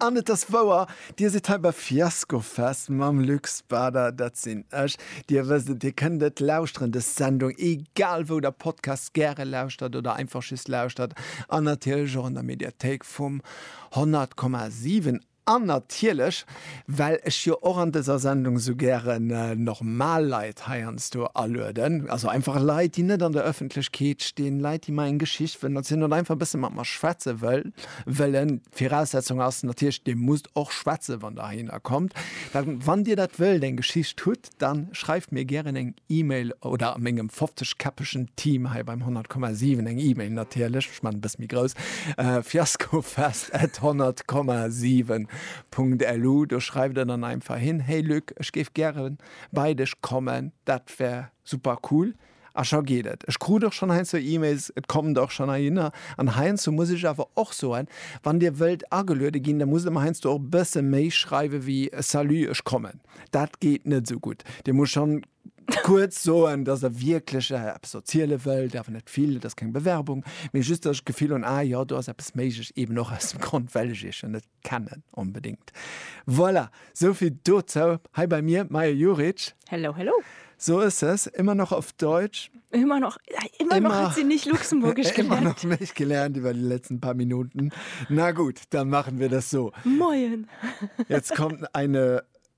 An et ass wouer, Dir sidd hei bei Fiaskofest mam Luc Spader, dat sinn ech. Dir wësst et, Dir kënnt et lauschteren, dës Sendung, egal wou Der Podcasts gäre lauschtert oder einfach just lauschtert, an natierlech och an der Mediathéik vum 100,7 an natierlech, Well ech jo och an dëser Sendung esou gären normal Leit heiansdo alueden, also einfach Leit, déi net an der Ëffentlechkeet stinn, Leit, déi mer eng Geschicht wëllen erzielen oder einfach e bësse mat mer schwätze wëllen. D'Viraussetzung ass natierlech, Dir musst och schwätzen, wann Der heihinner kommt. Wann Dir dat wëllt, eng Geschicht hutt, dann schreift mir gären eng Email oder mengem 50 käppegen Team hei beim 100,7 eng Email natierlech, ech maan e bëss méi grouss, fiaskofest at 100,7.lu, do schreift der dann einfach hin, hey Luc, ech géif gären bei dech kommen, dat wär super cool. A scho geet et. Ech krut och schonn heiansdo E-Mails, et kommt och schonn heihinner. An heiansdo muss ech awer och soen, wann Dir wëllt ageluede ginn, da musst Der mer heiansdo och e bësse méi schreiwe wéi Salut, ech kommen. Dat geet net esou gutt. Dir musst schonn kuerz soen, dass Der wierklech eppes erziele wëllt, awer net vill, et ass keng Bewerbung, mee just, dass ech d'Gefill hunn, ah jo, do ass eppes méiglech, eeben och aus dem Grond, well ech Iech jo net kennen onbedingt. Voilà, sou vill dozou. Hei bei mir Maja Juric. Hello, hello. So ist es, immer noch auf Deutsch. Immer noch, immer, immer noch hat sie nicht Luxemburgisch gelernt. Immer noch nicht gelernt über die letzten paar Minuten. Na gut, dann machen wir das so. Moin. Jetzt kommt eine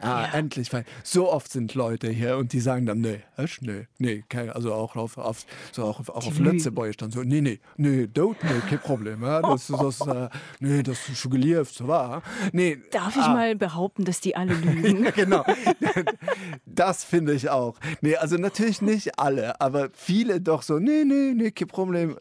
Ah, ja. endlich. Weil so oft sind Leute hier und die sagen dann, nee, ich, nee, nee, kein, also auch auf, auf, so auch, auch auf Lützeburg dann so, nee, nee, nee, dort, nee, kein Problem. Ja, das, das, äh, nee, das ist schon gelieft, so war. Nee, Darf ich ah. mal behaupten, dass die alle lügen? genau. Das finde ich auch. Nee, also natürlich nicht alle, aber viele doch so, nee, nee, nee, kein Problem.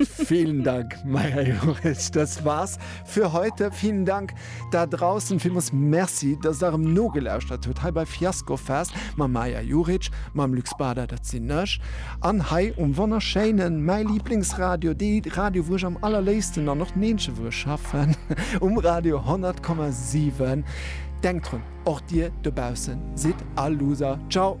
Vielen Dank, Maja Joris. Das war's für heute. Vielen Dank da draußen. Vielmals Merci, dass ihr darum nogelauschtert habt. Hei bei Fiasco Fest. Mam Maja Juric, mam Lux Bader, das sind ich. An hei um wunderschönen, mein Lieblingsradio, die Radio, wo ich am allerliebsten dann noch Menschen, wo ich schaffen, um Radio 100,7. Denkt dran, auch dir da draußen, seid all Loser. Ciao.